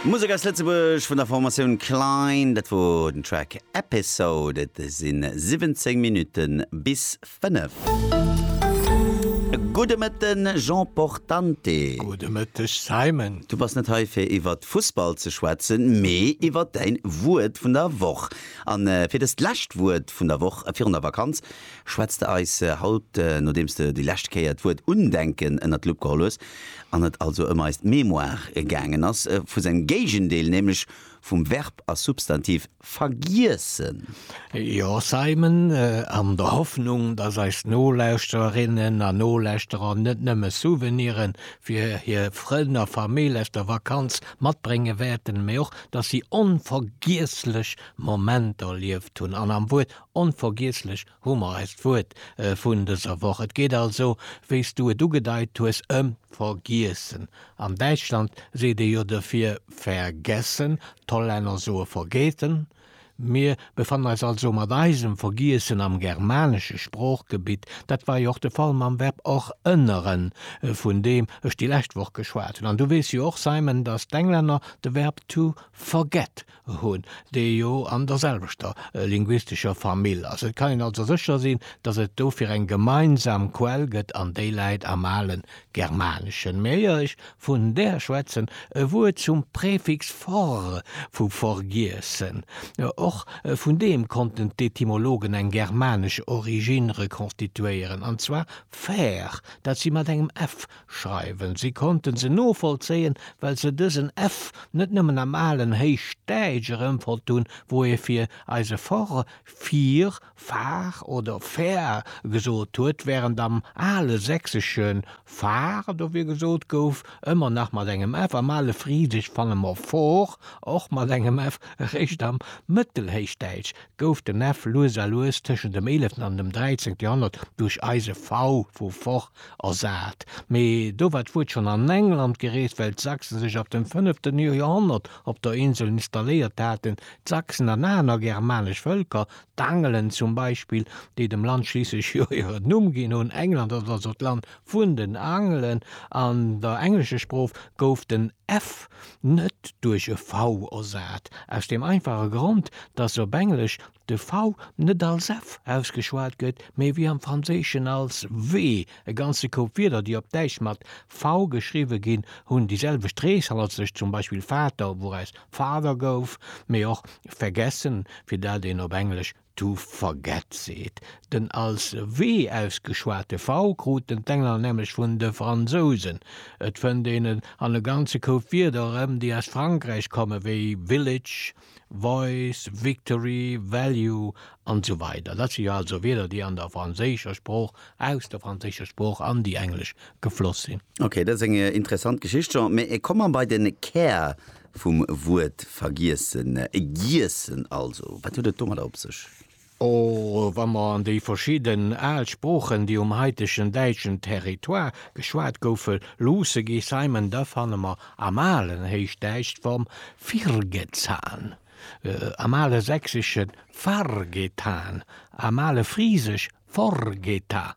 Musek aus Lëtzebuerg vun der Formatioun Klein. Dat wor den Track Episode. Et si 17 Minutte bis 5. Gudde Mëtten, Jean Portante. Gudde Mëtteg, Simon. Du bass net hei fir iwwert Fussball ze schwätzen, mee iwwert däin Wuert vun der Woch. An fir dëst lescht Wuert vun der Woch virun der Vakanz, Schwätz de eis haut, nodeems de déi lescht Kéier d'Wuert Undenken ënnert d'Lupp geholl hues an et also ëm eis Mémoire gaangen ass, vu sengem Géigendeel, nämlech vum Verb a Substantiv vergiessen? Jo, Simon, an der Hoffnung, dass eis Nolauschtererinnen a Nolauschterer net nëmme Souvenire fir hir Frënn a Famill aus der Vakanz matbrénge wäerten, mee och, dass si onvergiesslech Momenter erlieft hunn an am Wuert Onvergiesslech hu mer eist Wuert vun dëser Woch. Et geet also, wéi s du et ugedeit hues, ëm Vergiessen. An Däitschland seet ee jo dofir vergessen, d'Hollänner soe vergeten. Mir befannen eis also mat eisem Vergiessen am germanesche Sproochgebitt. Dat war jo och de Fall mam Verb och ënneren, vun deem ech déi lescht Woch geschwat hunn. An du weess jo och, Simon, datt d'Englänner de Verb to forget hunn, déi jo an derselwechter linguistescher Famill ass. Et kann een also sécher sinn, datt et dofir eng gemeinsam Quell gëtt an déi läit am ale Germaneschen. Mä ier ech vun der schwätzen, e Wuert zum Präfix for vu vergiessen. Och vun deem konnten d'Etymologen eng germanesch Originn rekonstituéieren, an zwar faire, dat si mat engem f Schreiwen. Si konnten se novollzéien, well se dësen F net nëmmen am alen Héichdäitsch erëmfonnt hunn, wou ee fir eise Fort fir, far oder fair gesot huet, während am ale Sächsesche far dofir gesot gouf, ëmmer nach mat engem F. Am ale Frisesch fanne mer for, och mat engem F. Eréischt am Mëttelhéichdäitsch gouf den F lues a lues tëschent dem eeleften an dem dräizéngte Joerhonnert duerch eise V vu fort Ersat, mee do war d'Wuert schonn an England gereest, well d'Sachsen sech ab dem fënneften Joerhonnert op der Insel installéiert haten. D'Sachsen an aner germanesch Vëlker, d'Angelen zum Beispill, déi dem Land schliisslech jo hiren Numm ginn hunn, England ass also d'Land vun den Angelen, an der englescher Sprooch gouf den f net duerch e v ersat, aus deem einfache Grond, dass op Englesch de V net als F ausgeschwat gëtt, mee wéi am Franséischen als W. E ganze Koup Wierder, déi op Däitsch mat V geschriwwe ginn, hunn déi selwecht Reeshalt, sech zum Beispill Vater, wouraus Father gouf, mee och vergessen, fir dat een op Englesch to forget seet. Den als W ausgeschwate V kruten d'Engler nämlech vun de Fransousen. Et fënnt een en an e ganze Koup Wierder erëm, déi aus Frankräich kommen, wéi village, Voice, Victory, Value an esou weider Dat si jo also Wierder, déi an der franséischer Sprooch, aus der franséischer Sprooch an déi englesch gefloss sinn. Ok, dat ass eng interessant Geschicht, Jean. Mee ech kommen bei den Kär vum Wuert vergiessen, giessen also. Wat huet et domadder op sech? Och wa mer an déi verschidden al Sproochen, déi um haitegen däitschen Territoire geschwat goufe luusse gi Simon, da fanne mer am alen Héichdäitsch d'Form virgezan, am ale Sächsesche vargetan, am ale Frisesch vorgeta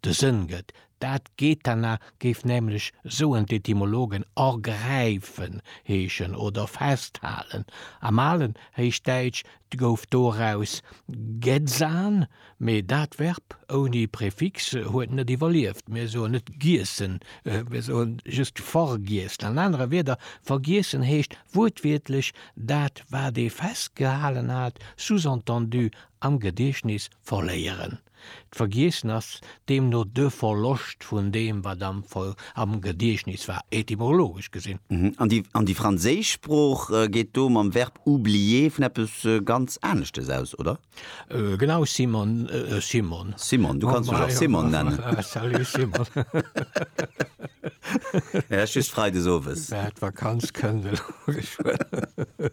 de Sënn gëtt. Dat Gethana géif nämlech, soen d'Etymologen, ergräifen heeschen oder festhalen. Am alen Héichdäitsch gouf doraus Getzan, mee dat Verb ouni Prefix huet net iwwerlieft. Mir soen net giessen, mir soe just vergiessen. An anere Wierder, vergiessen heescht wuertwiertlech dat, wat ee festgehalen hat, sous-entendu am Gediechtnis verléieren. D'Vergiessen ass deemno de Verloscht vun deem, wat am Gediechtnis war, etymologesch gesinn. An déi franséisch Sprooch geet do mam Verb oublier vun eppes ganz Aneschtes aus, oder? Genau, Simon, Simon. Simon, du kanns mech och Simon nennen. Salut, Simon. Just freides owes. D'Vakanz kënnt elo geschwënn.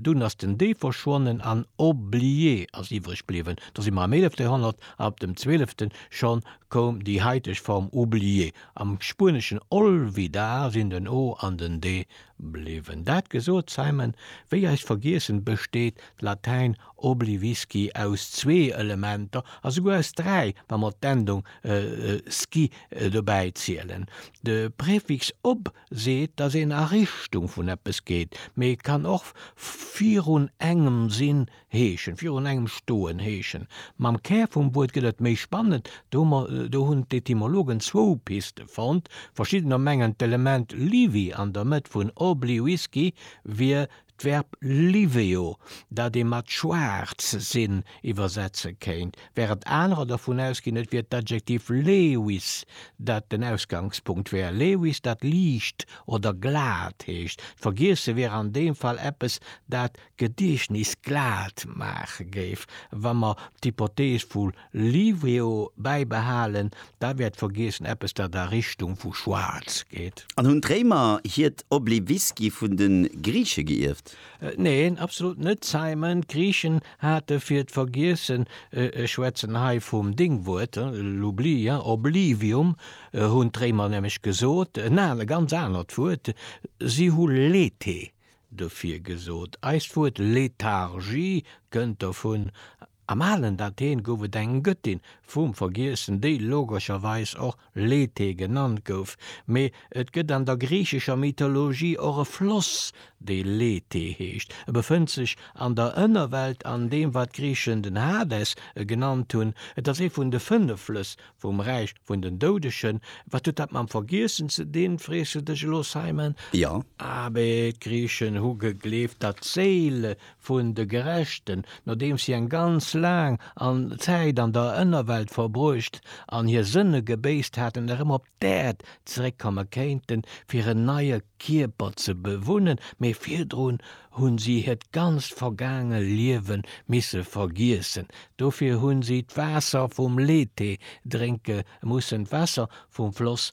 Dunn ass den Dee verschwonnen an Oublie ass iwwreg bliwwen. Do si mer am eelefte Joerhonnert an op dem zwölfte scho koum déi haiteg Form Oublie. Am Spueneschen olvidar sinn den o an den de bliwwen. Dat gesot, Simon, wéi eis vergiessen, besteet d'Latäin oblivisci aus zwee Elementer a souguer aus dräi, wa mer d'Endung sci dobäi zielen. De Prefix ob seet, dass een a Richtung vun eppes geet, mee et kann och virun engem sinn heeschen, virun engem stoen heeschen. Mam Kär vum Wuert gëtt et méi spannend, do hunn d'Etymologen zwou Piste fonnt, Verschiddener mengen d'Element liwi an der Mëtt vun obli-wisky wier D'Verb liveo, dat ee mat schwaarz sinn iwwersetze kéint, wärend anerer dervun ausginn, et wier d'Adjektiv lewiss, dat den Ausgangspunkt wär, lewiss, dat liicht oder glat heescht. D'Vergiesse wier an deem Fall eppes, dat d'Gediechtnis glat maache géif, wa mer d'Hypothees vu Livio bäibehalen, da wäert vergiessen eppes dat a Richtung vu schwaarz geet. An hunn d'Réimer hiert Obliviski vun de Griiche geierft? Neen, absolut net, Simon. D'Griichen hate fir d'Vergiessen, ech schwätzen hei vum Déngwuert, l'oubli, oblivium, hunn d'Réimer nämlech gesot, en anert, ganz anert Wuert, si hu Lethe dofir gesot. Eist Wuert Lethargie kënnt dovun. Am alen Athen gouf et eng Gëttin vum Vergiessen, déi logescherweis och Lethe genannt gouf, mee et gëtt an der griichescher Mythologie och e Floss, dee Lethe heescht. E befënnt sech an der Ënnerwelt an deem, wat d'Griichen den Hades genannt hunn. Et ass ee vun de fënnef Flëss vum Räich vun den Doudegen. Wat huet dat mam Vergiessen ze dinn, frees du dech elo, Simon? Jo. Abee, d'Griichen hu gegleeft, datt d'Séile vun de Gerechten, nodeems si eng ganz laang an Zäit an der Ënnerwelt verbruecht an hir Sënne gebéisst haten, erëm op d'Äerd zeréckkomme kéinten, fir en neie Kierper ze bewunnen, mee virdrun hu si hiert ganzt vergaange Liewe misse vergiessen. Dofir hu si d'Waasser vum Lethe drénke mussen, d'Waasser vum Floss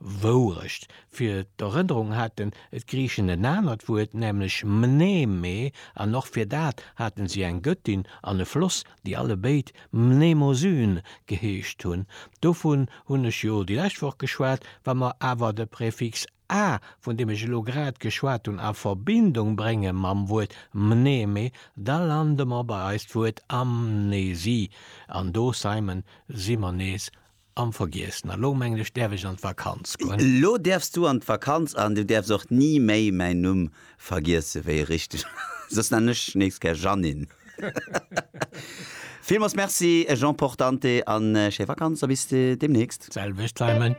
Wourecht, fir d'Erënnerung haten d'Griichen en anert Wuert, nämlech mneme, an och fir dat hate si eng Göttin an e Floss, déi allebéid Mnemosyne geheescht hunn. Dovun hunn ech jo déi lescht Woch geschwat. Wa mer awer de Prefix a, vun deem ech elo grad geschwat hunn, a Verbindung brénge mam Wuert mneme, da lande mer bei eist Wuert Amnesie, an do, Simon, si mer nees Am vergiessen. A lo mengen ech däerf ech an d'Vakanz goen. Lo däerfs du an d'Vakanz an du däerfs och ni méi mäin Numm vergiessen, wéi e richteg ass. Soss nennen ech dech nächst gär Jeannine. Villmools Merci Jean Portante an schéi Vakanz a bis demnächst. D'selwecht Simon.